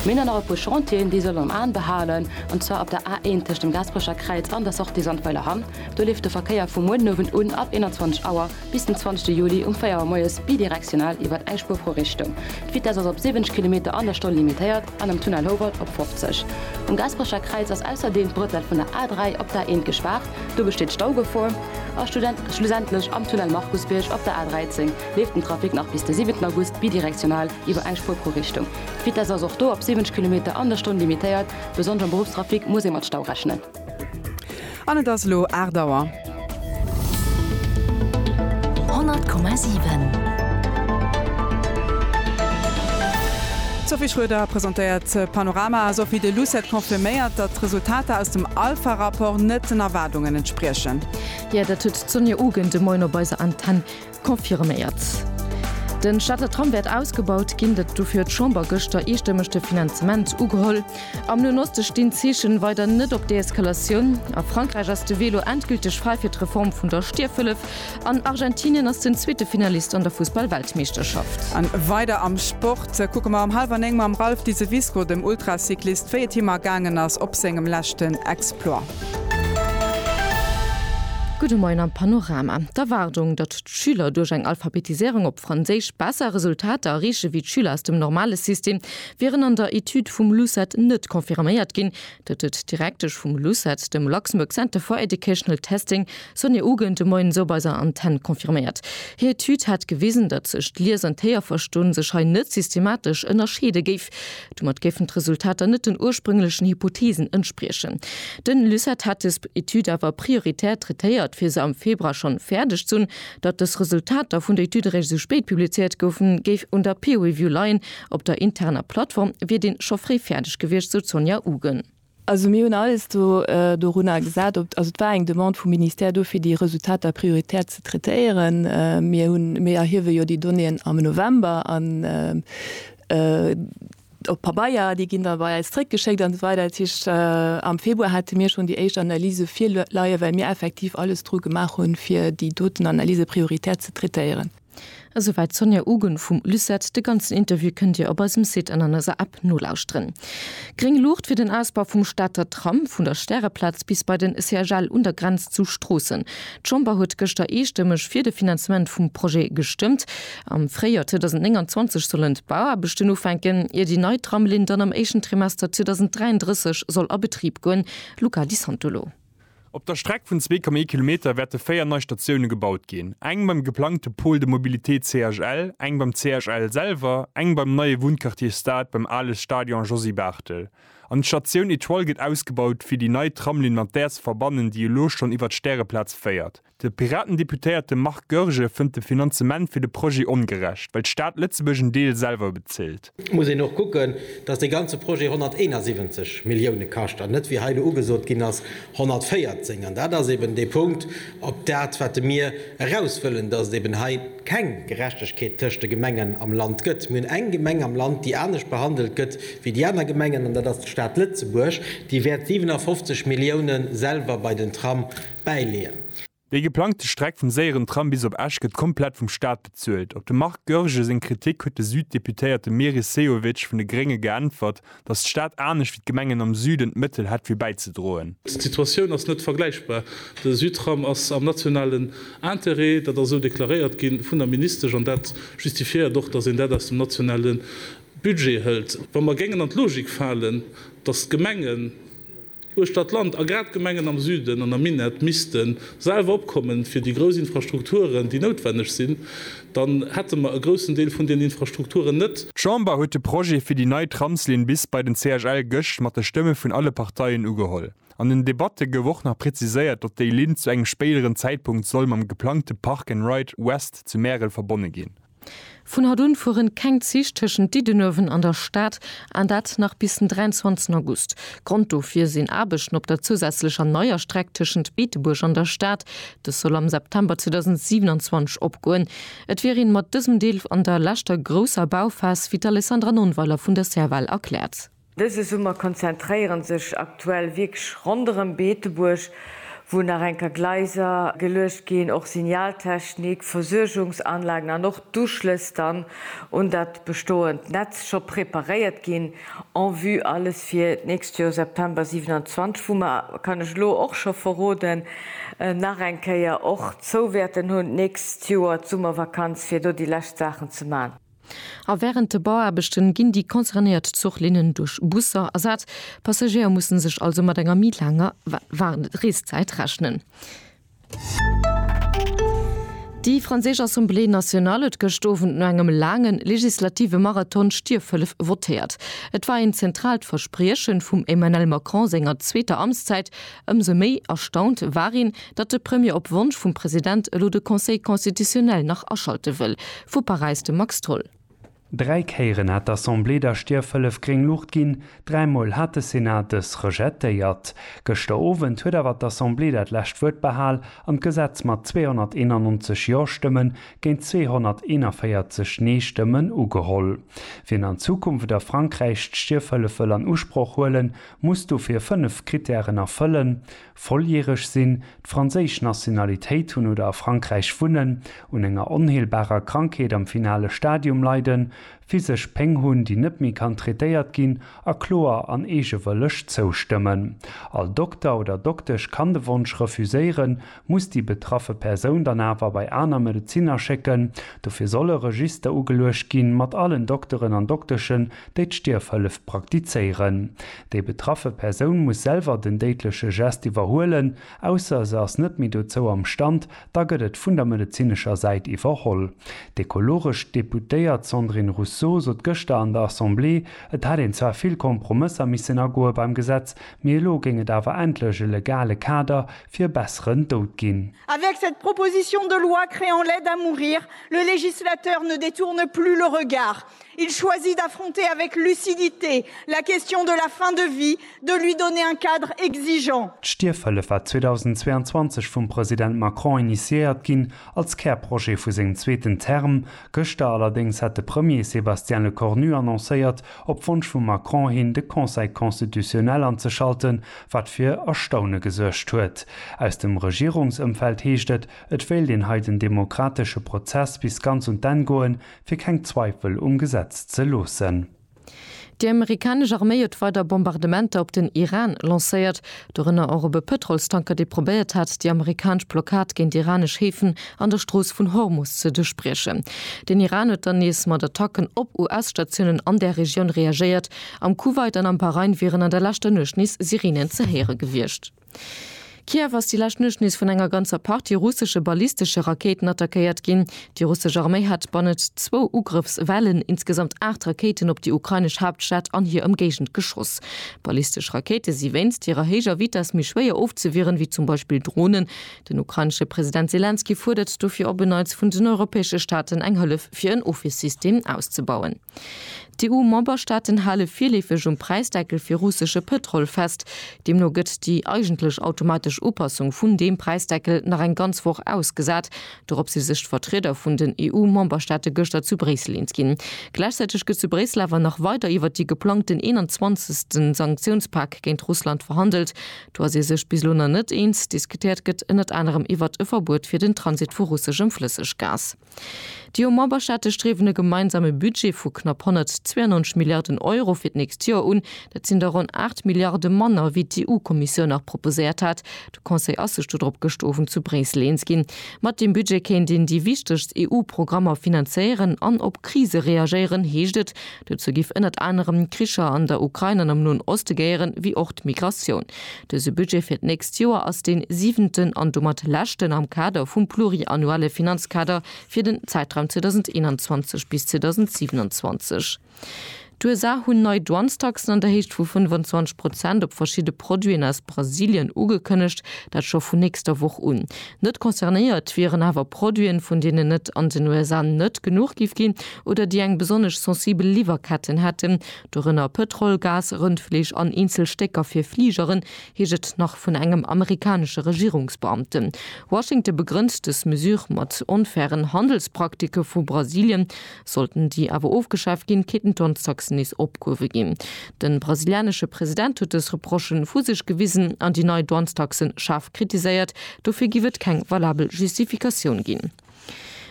Mir hunn dann nach e puer Chantieren, déi soll een am Aen behalen, an zwar op der A 1 tëscht dem Gaasperecher Kräiz an der Sortie Sandweiler Hamm. Do leeft de Verkéier vu muer den Owend un ab 21 Auer Bis den 20 Juli um 4 Auer moies bidirektional iwwert eng Spuer pro Richtung. D'Vitess ass op 70 Kilometer an der Stonn limitéiert an am Tunnel Howald op 50. Um Gasperecher Kräiz ass ausserdeem d'Brëttel vun der A3 op d'A1 gespaart, do besteet Staugefor. A schlussendlech am Tunnel Markusbierg op der A13 leeft den Trafic nach bis de 7 August bidirektional iwwer eng Spuer pro Richtung. D'Vitess ass och do op 70 Kilometer an der Stonn limitéiert, besonnesch am Beruffstrafic muss ee mat Stau rechnen. An et ass elo 8 Auer. 100,7. D'Sophie Schroeder presentéiert d'Panorama. Sophie, de Lucet confirméiert, datt d'Resultater aus dem Alpha-Rapport net den Erwaardungen entspriechen. Jo, dat huet d'Sonja Ugent de Moien op eiser Antenn Confirméiert. Den Stater Tram wäert ausgebaut ginn, dat dofir huet d'Chamber gëschter eestëmmeg de Finanzement ugeholl. Am Noen Oste stinn d'Zeechen weider net op Deeskalatioun. A Frankräich ass de Velo endgülteg fräi fir d'Reform vun der Stierfhëllef. An Argentinien ass den zweete Finalist an der Fussball-Weltmeeschterschaft. An weider am Sport kucke mer um hallwer 9 mam Ralph Diseviscourt, dem Ultracyclist, wéi et him ergaangen ass op sengem leschten Exploit. Gudde Moien am Panorama. D'Erwaardung, datt d'Schüler duerch eng Alphabetiséierung op Franséisch besser Resultater erreeche wéi d'Schüler aus dem normale System, wieren an der Etüd vum LUCET net confirméiert ginn. Dat huet d'Direktesch vum LUCET dem Luxembourg Center for Educational Testing Sonja Uggen de Moiens op eiser Antenn confirméiert. Hir Etüd hätt gewisen, datt sech d'Lies an d'Héierverston sech hei net systematesch ënnerscheede géif. Domat géifen d'Resultater net den ursprünglechen Hypotheesen entspriechen. De LUCET hätt des Etüd awer prioritär traitéiert, fir se am Februar schonn fäerdeg ze hunn. Datt des Resultater vun der Etüd eréischt esou spéit publizéiert goufen, géif un der Peer Review leien. Op der interner Plattform wier dee scho fréi fäerdeg gewiescht, sou d'Sonja Uggen. Also mir hunn alles do dorunner gesat, op, also et war eng Demande vum Ministère do fir déi Resultater prioritär ze traitéieren. Mir hunn, mir erhiewe jo déi Donnéeën am November an op Pabeier, déi ginn da bei eis zréckgeschéckt an esou weider. Dat heescht am Februar hate mir schonn déi éischt Analyse virleie well mir effektiv alles dru gemaach hunn, fir déi doten Analyse prioritär ze traitéieren. Esouwäit d'Sonia Ugun vum Lucet. De ganzen Interview kënnt Dir op eisem Site an an eiser App nolauschteren. Gréng Luucht fir den Ausbau vum Stater Tram, vun der Stäreplaz bis bei den CHL un der Grenz zu Stroossen. D'Chamber huet gëschter eestëmmeg fir de Finanzement vum Projet gestëmmt. Am Fréijoer 2029 sollen d'Bauaarbechten ufänken, ier déi nei Tramlinn dann am éischten Trimester 2033 soll a Betrib goen. Luca Di Santolo. Op der Streck vun 2,1 Kilometer wäerte véier nei Statioune gebaut ginn, eng beim geplangte Pôle de mobilité CHL, eng beim CHL selwer, eng beim neie Wunnquartier Stade beim ale Stadion Josy Barthel. An d'Statioun Etoile gëtt ausgebaut, fir déi nei Tramlinn mat där ze verbannen, déi elo schonn iwwer d'Stäreplaz féiert. De Piraten-Deputéierte Marc Goergen fënnt de Finanzement fir de Projet ongerecht, well d'Stad Lëtzebuerg en Deel selwer bezilt. Et muss een och kucken, datt dee ganze Projet 171 Millioune kascht an net, wéi hei elo ugesot ginn ass, 114. An dat ass eben dee Punkt, op dat wat de mir eraus wëllen, datt et eben hei keng Gerechtegkeet tëscht de Gemengen am Land gëtt. Mir hunn eng Gemeng am Land, déi anescht behandelt gëtt wéi déi aner Gemengen, an dat ass d'Stad Lëtzebuerg, déi wäert 57 Milliounen selwer bei den Tram, bäileeën. Déi geplangte Streck vum séieren Tram bis op Esch gëtt komplett vum Staat bezuelt. Op de Marc Goergen seng Kritik huet de Süd-Deputéierte Meris Sehovic vun de Grénge geäntwert, datt d'Stad anescht wéi d'Gemengen am Süden d'Mëttel hätt fir bäizedroen. D'Situatioun ass net vergläichbar. De Südtram ass am nationalen Interêt, dat ass esou deklaréiert gi vun der Ministesch an dat justifiéiert och, datt een dat aus dem nationale Budget hëlt. Wa mer géingen an d'Logik falen, datt d'Gemengen, uechter d'Land, a grad d'Gemengen am Süden an am Minett misste selwer opkommen fir déi grouss Infrastrukturen, déi noutwenneg sinn, dann hätte mer e groussen Deel vun deenen Infrastrukturen net. D'Chamber huet de Projet fir déi nei Tramslinn bis bei den CHL gëscht mat de Stëmme vun alle Parteien ugeholl. An den Debatte gouf och nach präziséiert, datt déi Linn zu engem spéideren Zäitpunkt soll mam geplangte Park and Ride West zu Märel verbonne ginn. Vun haut un fueren keng Zich tëschent Diddenuewen an der Stad, an dat nach bis den 23 August. Grond dofir sinn Aarbechten op der zousätzlecher neier Streck tëschent Beetebuerg an der Stad. Dës soll am September 2027 opgoen. Et wier een mat dësem Deel an der leschter grousser Bauphas, wéi d'Alessandra Nonnweiler vun der Serval erkläert. Dëse Summer konzentréieren sech aktuell wierklech ronderëm Beetebuerg, wou nach enker Gleiser geluecht ginn, och Signaltechnik, Versuergungsanlagen an och d'Uschlëss dann un dat bestoend Netz scho preparéiert ginn, en vue alles fir d'nächst Joer September 27, wou mer, kann ech elo och scho verroden, nach eng Kéier och zou wäerten hunn d'nächst Joer d'Summervakanz, fir do déi lescht Saachen ze man. A wärend de Bauaarbechte ginn déi concernéiert Zuchlinnen duerch Busser ersat. D'Passagéier musse sech also mat enger méi laanger Reeszäit rechnen. Déi franséisch Assemblée nationale huet gëscht Owend no engem laange legislative Marathon d'Stierfhëllef votéiert. Et war een zentraalt Versprieche vum Emmanel Macron senger zweeter Amtszäit. Ëmsou méi erstaunt war een, datt de Premier op Wonsch vum President elo de Conseil constitutionnel nach aschalte wëll. Vu Paräis de Max Tholl. Dräi Kéieren hat d'Assemblée der Stierfhëllef gréng Luucht ginn, dräi Mol hat de Senat dës rejetéiert. Gëschter Owend huet awer d'Assemblée dat lescht Wuert behal an d'Gesetz mat 291 Jo-Stëmmen géint 241 Nee-Stëmmen ugeholl. Wien an Zukunft a Frankräich d'Stierfhëllef wëll an Usproch huelen, muss dofir fënnef Krittären erfëllen, Volljäreg sinn, d'franséisch Nationalitéit hunn oder a Frankräich wunnen, un enger onheelbarer Krankheet am finale Stadium leiden, physesch Péng hunn, déi net méi kann traitéiert ginn, a kloer an eegewëlleg zoustëmmen. All Dokter oder Doktesch kann de Wonsch refuséieren, muss déi betraffe Persoun dann awer bei aner Medezinner schécken. Dofir soll e Register ugeluecht ginn, mat allen Dokteren an Dokteschen, déi d'Stierfhëllef praktizéieren. Déi betraffe Persoun muss selwer den déidleche Gest iwwerhuelen, ausser se ass net méi dozou am Stand, da gëtt et vun der medezinescher Säit iwwerholl. D'ekologesch Deputéiert Sandrine Rousseau sot gëschter an der Assemblée, et hätt een zwar vill Kompromësser missen agoe beim Gesetz, mee elo géing et awer endlech e legale Kader fir e besseren Doud ginn. Avec cette proposition de loi créant l'aide à mourir, le législateur ne détourne plus le regard. Il choisit d'affronter avec lucidité la question de la fin de vie, de lui donner un cadre exigeant. D'Stierfhëllef war 2022 vum President Macron initiéiert ginn, als Kärprojet vu sengem zweeten Term. Gëschter allerdéngs hat de Premier Sébastien Lecornu annoncéiert, op Wonsch vum Macron hin de Conseil constitutionnel anzeschalten, wat fir Erstaune gesuergt huet. Aus dem Regierungsëmfeld heescht et, et wéilt een hei den demokratesche Prozess bis ganz un d'Enn goen, fir keng Zweifel um Gesetz ze loossen. Déi amerikanesch Arméi huet weider Bombardementer op den Iran lancéiert, dorënner och op e Pëtrolstanker, dee probéiert hat, déi amerikanesch Blockad géint iranesch Häfen an der Strooss vun Hormus ze duerchbriechen. Den Iran huet dann nees mat Attacken op US-Statiounen an där Regioun reagéiert. Am Kuwait an am Bahrain wieren an der leschter Nuecht nees Sireenen ze héiere gewiescht. Kiew ass déi lescht Nuecht nees vun enger ganzer Partie russesche ballistesche Rakéiten attackéiert ginn. Déi russesch Arméi hat bannent zwou Ugrëffswellen insgesamt aacht Rakéiten op déi ukrainesch Haaptstad an hir Ëmgéigend geschoss. Ballistesch Rakéite si wéinst hirer héijer Vitess méi schwéier ofzewieren, wéi zum Beispill Dronen. Den ukrainesche President Selenskyj fuerdert dofir op en Neits vun den europäesche Staaten eng Hëllef fir en Ofwiersystem auszebauen. D'EU-Memberstaaten hale virleefeg um Präisdeckel fir russesche Pëtrol fest. Deemno gëtt déi eigentlech automatesch Upassung vun deem Präisdeckel nach eng ganz Woch ausgesat. Dorop si sech d'Vertrieder vun den EU-Memberstaate gëschter zu Bréissel eens ginn. Gläichzäiteg gëtt zu Bréissel awer nach weider iwwert déi geplangten 21. Sanktiounspak géint Russland verhandelt. Do ass ee sech bis elo nach net eens. Diskutéiert gëtt ënnert anerem iwwert e Verbuet fir den Transit vu russeschem Flësseggas. Déi EU Memberstaate striwen e gemeinsame Budget vu knapp 192 Milliarden Euro fir d'nächst Joer un. Dat sinn der ronn 8 Milliarde manner wéi d'EU Kommissioun nach proposéiert hat. De Conseil ass sech dodrop gëschter Owend zu Bréissel eens ginn. Mat deem Budget kéint een déi wichtegst EU Programmer finanzéieren an op Krise reagéieren, heescht et Dozou giff ënnert anerem d'Kricher an der Ukrain an am Noen Oste gehéieren, wéi och d'Migratioun. Dëse Budget fir d'nächst Joer ass dee siwenten an domat leschten am Kader vum pluriannuelle Finanzkader fir den Zäitraum 2021 bis 2027. D'USA hunn nei Douanestaxen an der Héicht vu 25 Prozent op verschidde Produiten aus Brasilien ugekënnegt, dat scho vun nächster Woch un. Net concernéiert wieren awer Produiten, vun deenen et an den USA net genuch giff ginn oder déi eng besonnesch sensibel Liwwerketten hätten, dorënner Pëtrol, Gas, Rëndfleesch an eenzel Stécker fir Fligeren, heescht et nach vun engem amerikanesche Regierungsbeamten. Washington begrënnt dës Mesure mat onfairen Handelspraktiken vu Brasilien. Sollten déi awer ofgeschaaft ginn, kéinten d'Antaxen nees opgehuewe ginn. De brasilianesche President huet dës Reprochen vu sech gewisen an déi nei Douanestaxe schaarf kritiséiert. Dofir giff et keng valabel Justifikatioun ginn.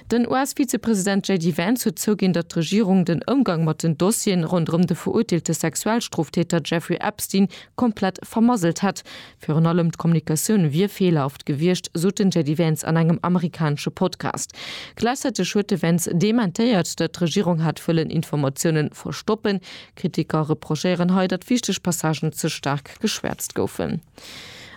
Den US-Vizepresident JD Vance huet zouginn, datt d'Regierung den Ëmgang mat den Dossieren ronderëm de verurteelte Sexualstroftäter Jeffrey Epstein komplett vermasselt hätt. Virun allem d'Kommunikatioun wier feelerhaft gewiescht, sot den JD Vance an engem amerikanesche Podcast. Gläichzäiteg huet de Vance dementéiert, datt d'Regierung hätt wëllen Informatiounen verstoppen. Kritiker reprochéieren hei, datt wichteg Passagen ze staark geschwäerzt goufen.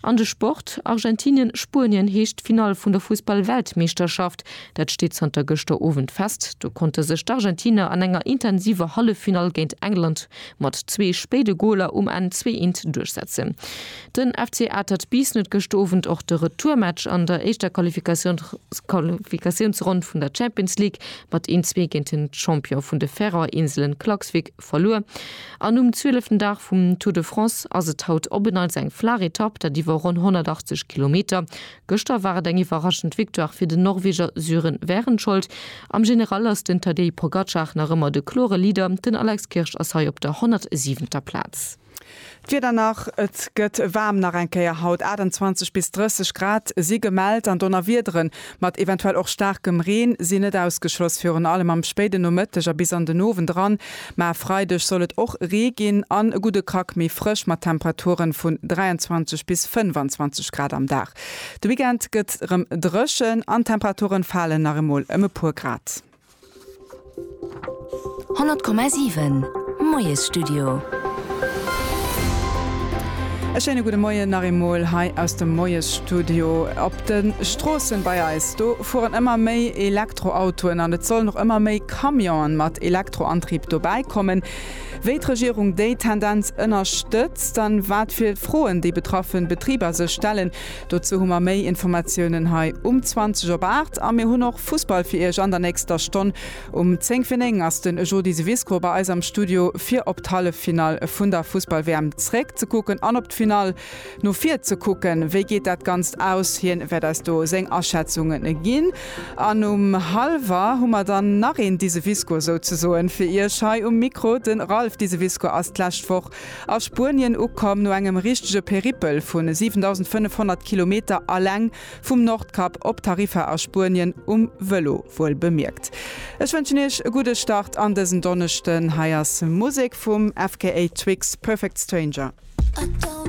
An de Sport, Argentinien, Spuenien heescht d'Finall vun der Fussball-Weltmeeschterschaft. Dat steet zanter gëschter Owend fest. Do konnte sech d'Argentiner an enger intensiver Halleffinall géint England mat zwee spéide Goler um Enn zwee Eent duerchsetzen. Den FC Atert Biissen huet gëscht Owend och de Retourmatch an der éischter Qualifikatiounsronn vun der Champions League mat een zwee géint den Champion vun de Färöer Inselen Klaksvík verluer an um zwieleften Dag vum Tour de France ass et haut op en Neits eng flaach Etapp, dat iwwer ronn 180 Kilometer. Gëschter war et eng iwwerraschend Victoire fir den Norweger Sören Wehrenskjold. Am General ass den Tadej Pogacar nach ëmmer de klore Leader, den Alex Kirsch ass hei op der 107. Plaz. D'Wieder nach, Et gëtt waarm nach eng Kéier haut. 28 bis 30 Grad si gemellt an Donnerwiedere mat eventuell och staarkem Reen sinn net ausgeschloss, virun allem am spéiden Nomëtteg a bis an den Owend eran. Mä e Freideg soll et och Ree ginn an e gudde Krack méi frësch mat Temperaturen vun 23 bis 25 Grad am Dag. De Weekend gëtt rëm dréchen an d'Temperaturen falen nach emol ëm e puer Grad. 100,7 Moiesstudio. E schéine gudde Moien nach eemol hei aus dem Moiesstudio op De Stroossen bei eis, do fueren ëmmer méi Elektroautoen an et sollen och ëmmer méi Camionen mat Elektroantrieb dobäi kommen. Wéi d'Regierung déi Tendenz ënnerstëtzt an wat fir Froen déi betraffen Betriber sech stellen, dozou hu mer méi Informatiounen hei um 20 op 8. A mir hunn och Fussball fir iech an der nächster Stonn. Um 10 fir 9 ass den Jody Syvisco bei eis am Studio fir op d'Halleffinall vun der Fussball-WM zréck ze kucken an op d'Finall No vir ze kucken, wéi geet dat Ganzt aus? Hien wäert eis do seng Aschätzungen ginn. An um Halwer hu mer dann nach een Diseviscour souzesoen fir iech hei um Mikro. De Ralph Diseviscour ass d'lescht Woch a Spuenien ukomm, no engem richtege Peripel vu 7.500 Kilometer alleng vum Nordkap op Tarifa a Spuenien, um Vëlo wuel bemierkt. Ech wënschen iech e gudde Start an dësen Donneschden. Hei ass Musek vum FKA Twigs, Perfect Stranger.